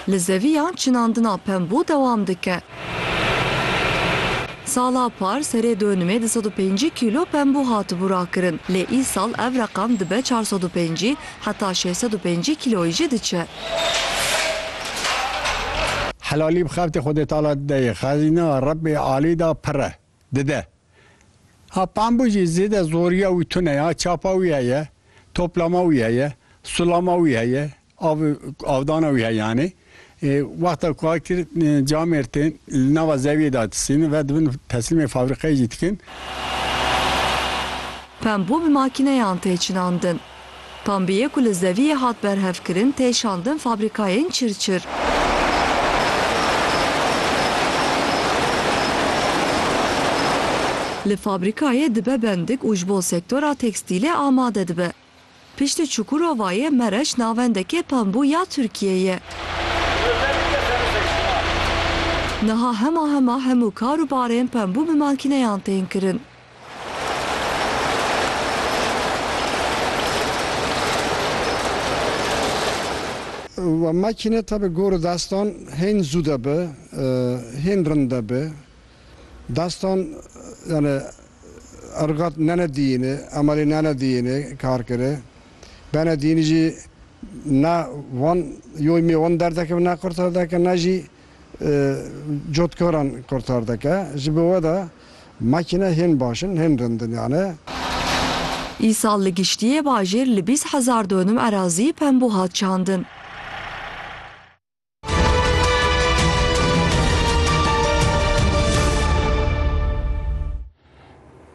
Li zeviyan çinandina pembû dewam dike. Sala par serê dönimê du sed û pêncî kîlo pembû hatibû rakirin lê îsal ev reqam dibe çar sed û pêncî heta şeş sed û pêncî kîloyî jî diçe. Helalî bi xeftê Xwedêtala dideyê, xezîna Rebbê alî de pir e. dide. Ha pambû jî zêde zoriya wî tune ya, çapa wî heye, toplama wî heye, sulama wî heye, av avdana wî heye yanî. Wexta ku a kir camêr tên li nava zeviyê de disînin ve dibin teslîmê fabrîkeyê jî dikin. Pambû bi makîneyan tê çinandin. Kambiyê ku li zeviyê hat berhevkirin tê şandin fabrîkayên çirçir. Li fabrîkayê dibe bendik û ji bo sektora tekstîlê amade dibe. Piştî Çukurovayê Mereş navendekê pembû ya Tirkiyê ye. Niha hema hema hemû kar û barên pembû bi makîneyan tên kirin. Wa makîne tabi gorî dastan hên zû de bi, hên rind de bi. Dastan yanî irgat nene diyînê, emelê nene diyînê kar kirê. Bene diyînê jî ne wan yoymê wan derdeke ne qurterdeke ne jî. cotkaran kurtar dike. Ji bo we de makîne hên baş in, hên rind in yani. Îsal li giştiyê bajêr li bîst hezar donim erazî pembû hat çandin.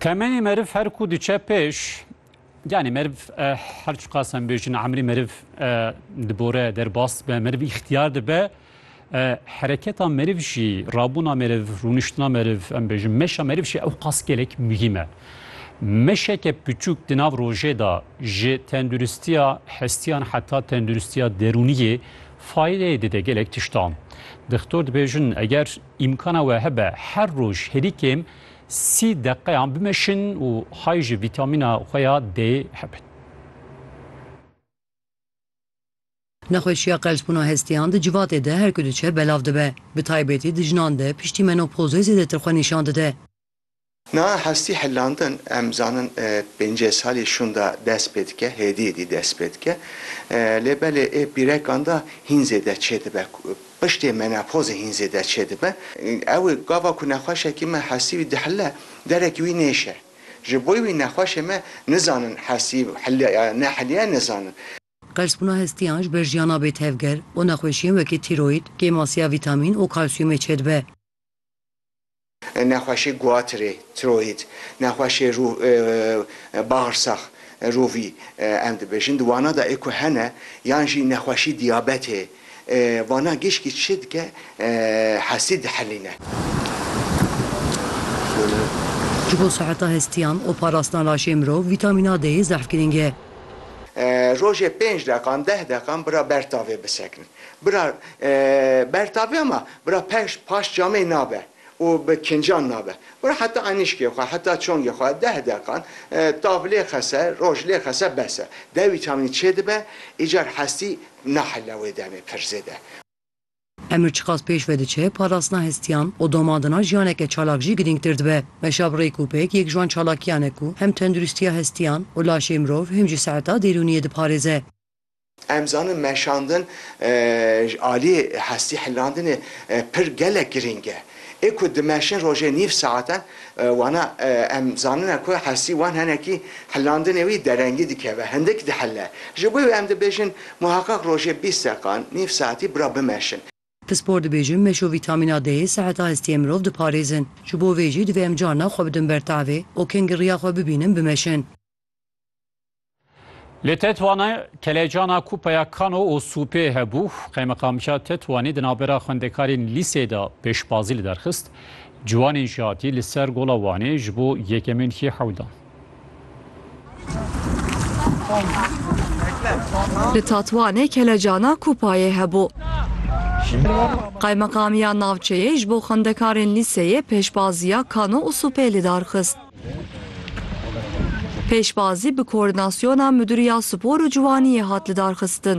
Temenê meriv her ku diçe pêş, Yanî meriv her çiqas em bêjin emrî meriv dibore derbas be meriv îxtiyar dibe hereketa meriv jî rabûna meriv rûniştina meriv em bêjin meşa meriv jî ew qas gelek muhîm e. Meşeke piçûk di nav rojê da ji tenduristiya hestiyan heta tenduristiya derûniyê faydeyê dide gelek tiştan. Dixtor dibêjin eger îmkana we hebe her roj herî kêm Sî deqeyan bimeşin û hay ji vîtamîna xwe ya D'ê hebin. Nexweşiya qelsbûna hestiyan di civatê de her ku diçe belav dibe. Bi taybetî di jinan de piştî menopozê zêdetir xwe nîşan dide. Niha hestî hilandin em zanin pêncê salî şûn de dest pê dike, hêdî hêdî dest pê dike. Lê belê ê pîrekan de hîn zêde çêdibe Piştê menopozê hîn zêde çêdibe. Ew ê gava ku nexweşekî me hesî wî dihile, derekî wî nêşe. Ji bo wî nexweşê me nizanin hesî hiliya ya ne hiliya nizanin. Qersbûna hestiyan ji ber jiyana bê tevger û nexweşiyên wekî tîroyîd, kêmasiya vîtamîn û kalsiyumê çêdibe. Nexweşê Guatirê, Tiroyîd, nexweşê rû, bagrsax, rûvî, em dibêjin. Di wana da ê ku hene yan jî nexweşî diyabetê, vana gişkî çi dike hestî dihelîne. Ji bo siheta hestiyan û parastina laşê mirov vîtamîna D'yê zerf girîng e. Rojê pênc deqan, deh deqan bira ber tavê bisekin. Bira bertaviya ma bira peş paş camê nabe û bi kincan nabe. Bira heta enîşkê xwe heta çongê xwe deh deqan tav lê xese roj lê xese bes e. Dewî çamînî çêdibe îcar hestî nahile wê demê pir zêde. Emir çiqas pêş ve diçe parastina hestiyan û domadina jiyaneke çalak jî girîngtir dibe. Meşa bi rêkûpêk yek ji wan çalakiyan e ku hem tenduristiya hestiyan û laşê mirov hem jî seeta dêrûniyê diparêze. Em zanin meşandin ji aliyê hestî hilrandinê pir gelek girîng e. Ê ku dimeşin rojê nîv saetan wana em zanine ku hestî wan henekî hilrandinê wî derengî dikeve, hindik dihile. Ji bo wê em dibêjin muheqeq rojê bîst deqan, nîv saetî bira bimeşin. Pispor dibêjin meşo vîtamîna D'yê seheta hestiyê mirov diparêzin. Ji bo vê jî divê em carna xwe bidin ber tavê û kengî riya xwe bibînin bimeşin. Li Tetwanê kelecana Kupeya Kano û Sûpê hebû, qeymeqamca Tetwanê di navbera xwendekarên lîsê de pêşbazî li derxist, ciwanên jî hatî li ser Gola Wanê ji bo yekemîn hî hewldan. Li Tatwanê kelecana Kupayê hebû. Qeymeqamiya navçeyê ji bo xwendekarên lîseyê pêşbaziya Kano û Sûpê li dar xist. Pêşbazî bi koordinasyona Midûriya Spor û Ciwaniyê hat lidarxistin.